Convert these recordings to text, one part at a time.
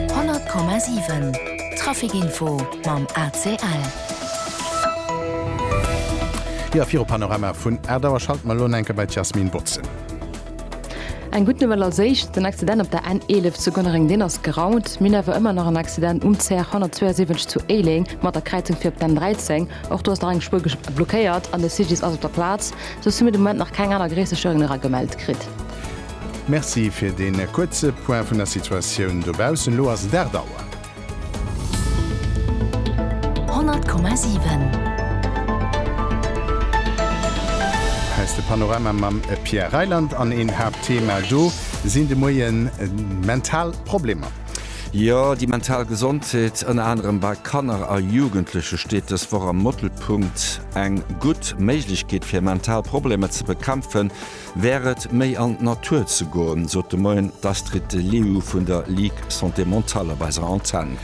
100,7 Trafic-Info mam ACL. Jo, viru Panorama vun 8 Auer schalte mer elo enke bei d'Jasmine Botzen. Eng gutt Nouvelle als éischt, Den Accident op der N11 zu Gonnereng, deen ass geraumt. Mir hunn awer ëmmer nach en Accident um CR 172 zu Éileng mat der Kräizung fir op d'N13. Och do ass nach eng Spuer blockéiert an de CGDIS ass op der Plaz. Soss hu mir de Moment nach keng aner gréisser Störingen era gemellt kritt. Merci fir dee kuerze Point vun der Situatioun dobaussen. Elo ass et 8 Auer. 100,7. Hei ass de Panorama mam Pierre Reyland an een Haaptthema do sinn de Moien mental Problemer. Jo, déi mental Gesondheet, ënner anerem bei Kanner a Jugendleche steet dës Woch am Mëttelpunkt. Eng gutt Méiglechkeet fir mental Problemer ze bekämpfen, Wär et méi an d'Natur ze goen, sot de Moien d'Astrid de Leeuw vun der Ligue Santé Mentale op eiser Antenn.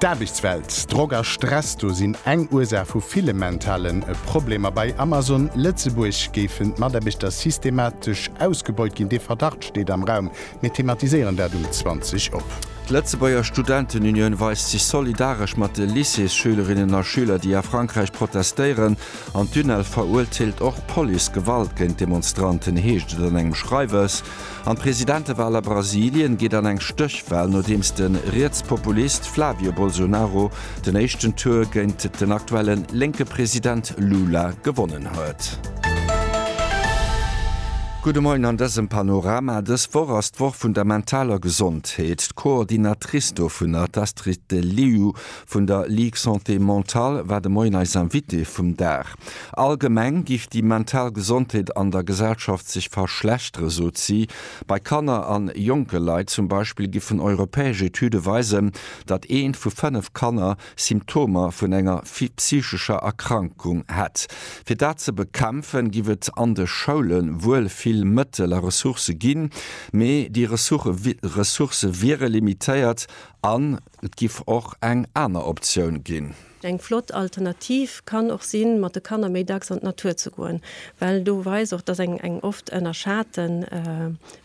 D'Aarbechtswelt, Drock a Stress, do sinn eng Ursaach vu ville mentale Problemer. Bei Amazon Lëtzebuerg géifen d'Mataarbechter systematesch ausgebeut ginn. Dee Verdacht steet am Raum. Mir thematiséieren dat um 20 op. D'Lëtzebuerger Studentenunioun weist sech solidaresch mat de Lycéesschülerinnen a schüler, déi a Frankräich protestéieren. An d'UNEL verurteelt och Policegewalt géint Demonstranten, heescht et an engem Schreiwes. An d'Presidentewal a Brasilien geet an eng Stéchwal, nodeems de Rietspopulist Flavio Bolsonaro den éischten Tour géint den aktuelle lénke President Lula gewonnen huet. Gudde Moien an dësem Panorama. Dës Woch ass d'Woch vun der mentaler Gesondheet. D'Coordinatrice dovunner, d'Astrid Deliu, Vun der Ligue Santé Mentale war de Moien eis Invitée vum Dag. Allgemeng géif déi mental Gesondheet an der Gesellschaft sech verschlechtere sot si. Bei Kanner an jonke Leit zum Beispill géifen europäesch Etüde weisen, datt eent vu fënnef Kanner Symptomer vun enger psychescher Erkrankung hätt. Fir dat ze bekämpfe giff et an de Schoule wuel vill Mëttel a Ressourcë ginn, mee déi Ressourcë wiere limitéiert an, Et giff och eng aner Optioun ginn. Eng flott Alternativ kann och sinn mat de Kanner méi dacks an d'Natur ze goen, well do weist och, dass eng oft ënnerschaten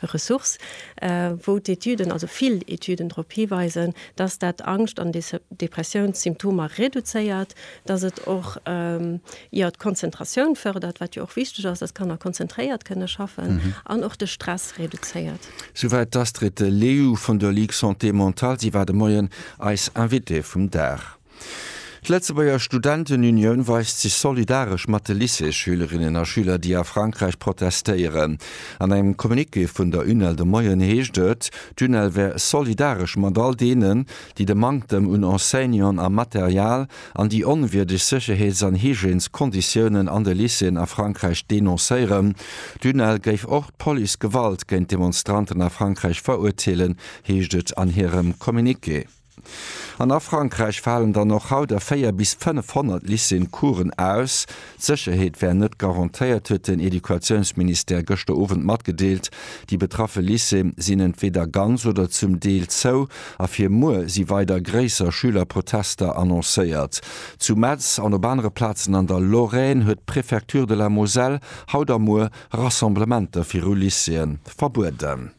Ressource, wou d'Etüden, also vill Etüden drop hiweisen, dass dat Angscht an Depressiounssymptomer reduzéiert, dass et och jo d'Konzentratioun fërdert, wat jo och wichteg ass, dass d'Kanner konzentréiert kënne schaffen, an och de Stress reduzéiert. Souwäit d'Astrid Leyou vun der Ligue Santé Mentale. Si war de Moien eis Invitée vum Dag. D'Lëtzebuerger Studentenunioun weist sech solidaresch mat de Lycées-Schülerinnen a Schüler, déi a Frankräich protestéieren. An engem Communiqué vun der UNEL de Moien heescht et, d'UNEL wär solidaresch mat all deenen, déi de Manktem un Enseignanten a Material, an déi onwierdeg Sécherheets an Hygièneskonditiounen an de Lycéeën a Frankräich denoncéieren. D'UNEL géif och d'Police Gewalt géint Demonstranten a Frankräich verurteelen, heescht et an hirem Communiqué. An a Frankräich falen dann och haut a 400 bis 500 Lycéeën Coursen aus. D'Sécherheet wär net garantéiert, huet den Educatiounsministère gëschter Owend matgedeelt. Déi betraffe Lycéeë sinn entweeder ganz oder zum Deel zou a fir muer si weider gréisser Schülerprotester annoncéiert. Zu Metz an op anere Plazen an der Lorraine huet d'Prefecture de la Moselle haut a muer Rassemblementer viru Lycéeë verbueden.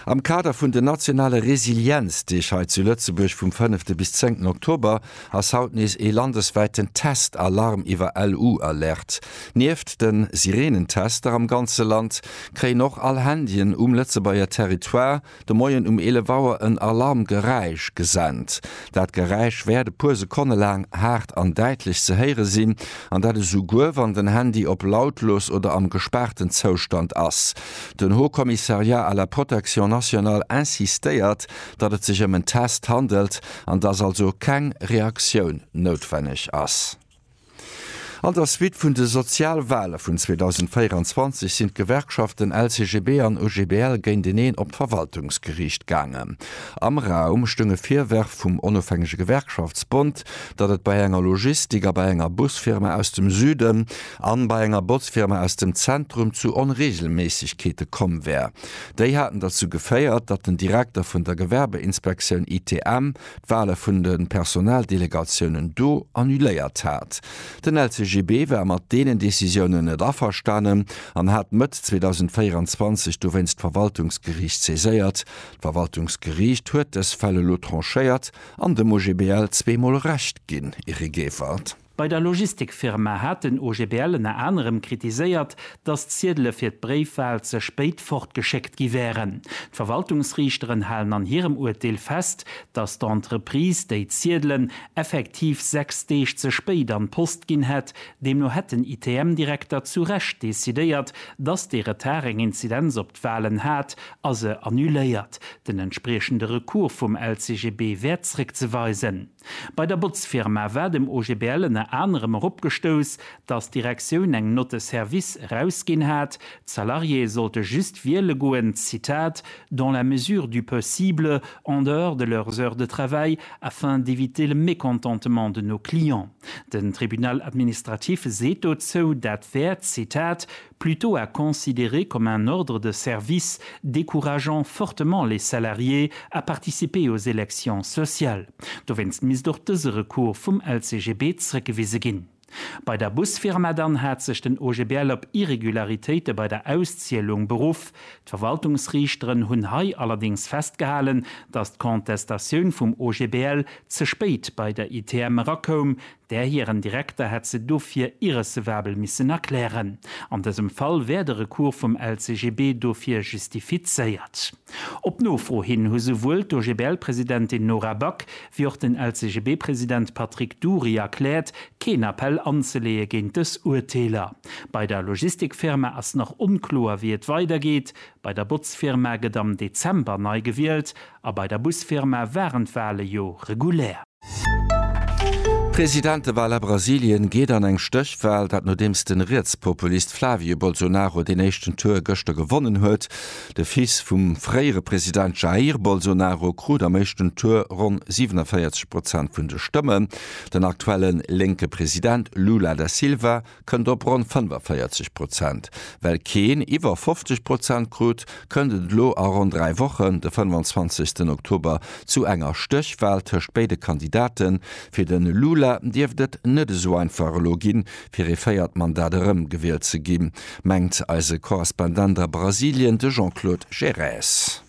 Am Kader vun den nationale Resilienzdeeg hei zu Lëtzebuerg vum fënnefte bis zéngten Oktober ass haut nees ee landeswäiten Test-Alarm iwwer LU-Alert. Nieft de Sireenentester am ganze Land kréien och all Handyen um Lëtzebuerger Territoire de Moien um 11 Auer en Alarmgeräisch gesent. Dat Geräisch wäert e puer Sekonne laang haart an däitlech ze héiere sinn, an dat esouguer wann den Handy op lautlos oder am gespaarten Zoustand ass. Den Haut Commissariat à la Protection nationale insistéiert, datt et sech ëm en Test handelt an datt also keng Reaktioun noutwenneg ass. An der Suite vun de Sozialwale vun 2024 sinn d'Gewerkschaften LCGB an OGBL géinteneen op d'Verwaltungsgeriicht gaangen. Am Raum stoung e Virwerf vum Onofhängege Gewerkschaftsbond, datt et bei enger Logistik a bei enger Busfirma aus dem Süden an bei enger Botzfirma aus dem Zentrum zu Onreegelméissegkeete komm wär. Déi haten derzou geféiert, datt den Direkter vun der Gewerbeinspektioun, ITM, d'Wale vun de Personaldelegatiounen do annuléiert hat. Den LCGB war mat deenen Decisiounen net averstanen an hat Mëtt 2024 dowéinst d'Verwaltungsgeriicht saiséiert. D'Verwaltungsgeriicht huet dës Fäll elo tranchéiert an dem OGBL zweemol Recht ginn, Eric Evert. Bei der Logistikfirma hat den OGBL ënner anerem kritiséiert, datt d'Ziedele fir d'Bréifwal ze spéit fortgeschéckt gi wären. D'Verwaltungsriichteren halen an hirem Urteel fest, datt d'Entreprise déi Ziedelen effektiv sechs Deeg ze spéit an d'Post ginn hätt. Deemno hätt den ITM-Direkter zu Recht decidéiert, datt dee Retard eng Inzidenz op d'Walen hat a se annuléiert. Den entspriechende Recours vum LCGB wär zréckzeweisen. Bei der Botzfirma war dem OGBL ënner anerem erop gestouss, datt d'Direktioun eng Note de service erausginn hat, d'Salariéë sollte just wiele goen, Zitat, dans la mesure du possible, en dehors de leurs heures de travail, afin d'éviter le mécontentement de nos clients. Den Tribunal administratif seet dozou, dat wär, Zitat, plutôt à considérer comme un ordre de service décourageant fortement les salariés à participer aux élections sociales. Dowéinst misst och dëse Recours vum LCGB zrëckgewise ginn. Bei der Busfirma dann hat sech den OGBL op Irregularitéite bei der Auszielung beruff. D'Verwaltungsriichteren hunn hei allerdéngs festgehalen, dass d'Contestatioun vum OGBL ze spéit bei der ITM erakoum, Där hiren Direkter hätt se dofir irrecevabel missen erklären. An dësem Fall wär de Recours vum LCGB dofir justifizéiert. Op Nofro hin hu souwuel d'OGBL-Presidentin Nora Back wéi och den LCGB-President Patrick Dury erkläert, keen Appell anzeleeë géint dës Urteeler. Bei der Logistikfirma ass nach onkloer, wéi et weidergeet. Bei der Botzfirma gëtt am Dezember nei gewielt a bei der Busfirma waren d'Wale jo regulär. D'Presidentewal a Brasilien geet an eng Stéchwal, dat nodeems den Rietspopulist Flavio Bolsonaro deen éischten Tour gëschter gewonnen huet. De Fils vum fréiere President Jair Bolsonaro krut am éischten Tour ronn 47 Prozent vun de Stëmmen. Den aktuellen lénke President Lula da Silva kënnt op ronn 45 Prozent. Well keen iwwer 50 Prozent krut, kënnt et elo a ronn dräi Wochen, de 25 Oktober, zu enger Stéchwal tëscht béide Kandidaten. Fir de Lula dierft et net esou einfach elo ginn, fir ee véiert Mandat erëmgewielt ze ginn, mengt eise Korrespondent a Brasilien, de Jean-Claude Gerês.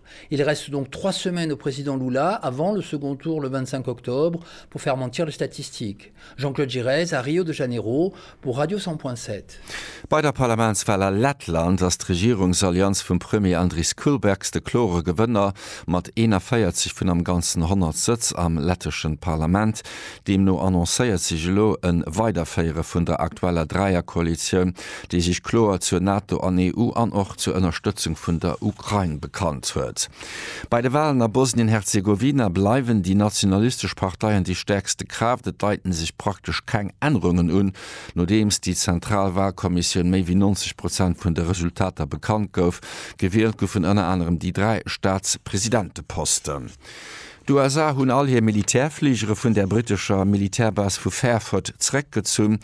Il reste donc trois semaines au président Lula avant le second tour le 25 octobre pour faire mentir les statistiques. Jean-Claude Giresse a Rio de Janeiro pour Radio 100.7. Bei der Parlamentswal a Lettland ass d'Regierungsallianz vum Premier Andris Kulbergs de klore Gewënner mat 41 vun am Ganzen 100 Sëtz am letteschen Parlament. Deemno annoncéiert sech elo e Weiderféiere vun der aktueller Dräierkoalitioun, déi sech kloer zur NATO an EU an och zur Ënnerstëtzung vun der Ukrain bekannt huet. Bei de Walen a Bosnien-Herzegowina bleiwen déi nationalistesch Parteien déi stäerkste Kraaft. Et deiten sech praktesch keng Ännerungen un, nodeems déi zentral Walkommissioun méi wéi 90 Prozent vun de Resultater bekannt gouf. Gewielt goufen ënner anerem déi dräi Staatspresidenteposten. D'USA hunn all hir Militärfligere vun der brittescher Militärbase vu Fairford zeréckgezunn.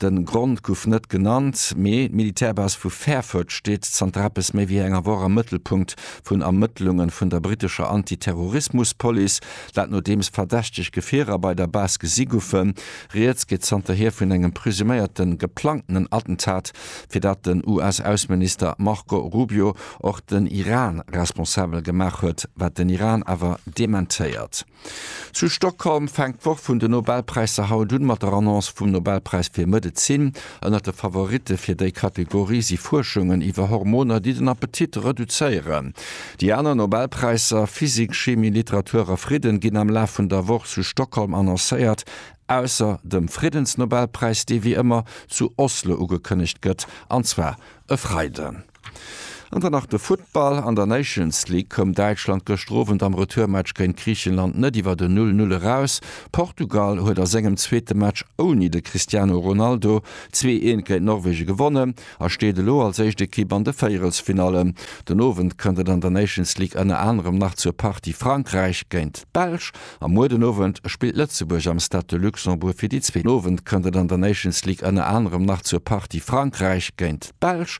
De Grond guff net genannt, mee d'Militärbase vu Fairford steet zanter eppes méi wéi enger Woch am Mëttelpunkt vun Ermëttlunge vun der brittescher Antiterrorismuspolice, dat nodeems verdächteg Gefierer bei der Base gesi guffen. Rieds geet zanterhier vun engem presuméierte geplangtenen Attentat fir dat den US-Ausseminister Marco Rubio och den Iran responsabel gemaach huet, wat den Iran awer dementéiert. Zu Stockholm fänkt d'Woch vun den Nobelpräisser haut un, mat der Annonce vum Nobelpräis fir Medezin. Ënnert de Favoritte fir déi Kategorie si Fuerschungen iwwer Hormoner, déi den Appetit reduzéieren. Déi aner Nobelpräisser, Physik, Chimie, Literatur a Fridden, ginn am Laf vun der Woch zu Stockholm annoncéiert. Ausser dem Friddensnobelpräis, dee wéi ëmmer zu Oslo ugekënnegt gëtt, an zwar e Freiden. An dann nach de Futtball, An der Nations League koum Däitschland gëschter Owend am Retourmatch géint Griichenland net iwwer en Null-Null eraus. Portugal huet a sengem zweete Match ouni de Cristiano Ronaldo zwee Eent géint Norwegen gewonnen a steet elo als éischt Ekipp an de Véierelsfinallen. Den Owend kënnt et an der Nations League ënner anerem nach zur Partie Frankräich géint d'Belsch. A muer den Owend spillt Lëtzebuerg am Stade de Luxembourg. Fir déi zweet Owend kënnt et an der Nations League ënner anerem nach zur Partie Frankräich géint d'Belsch.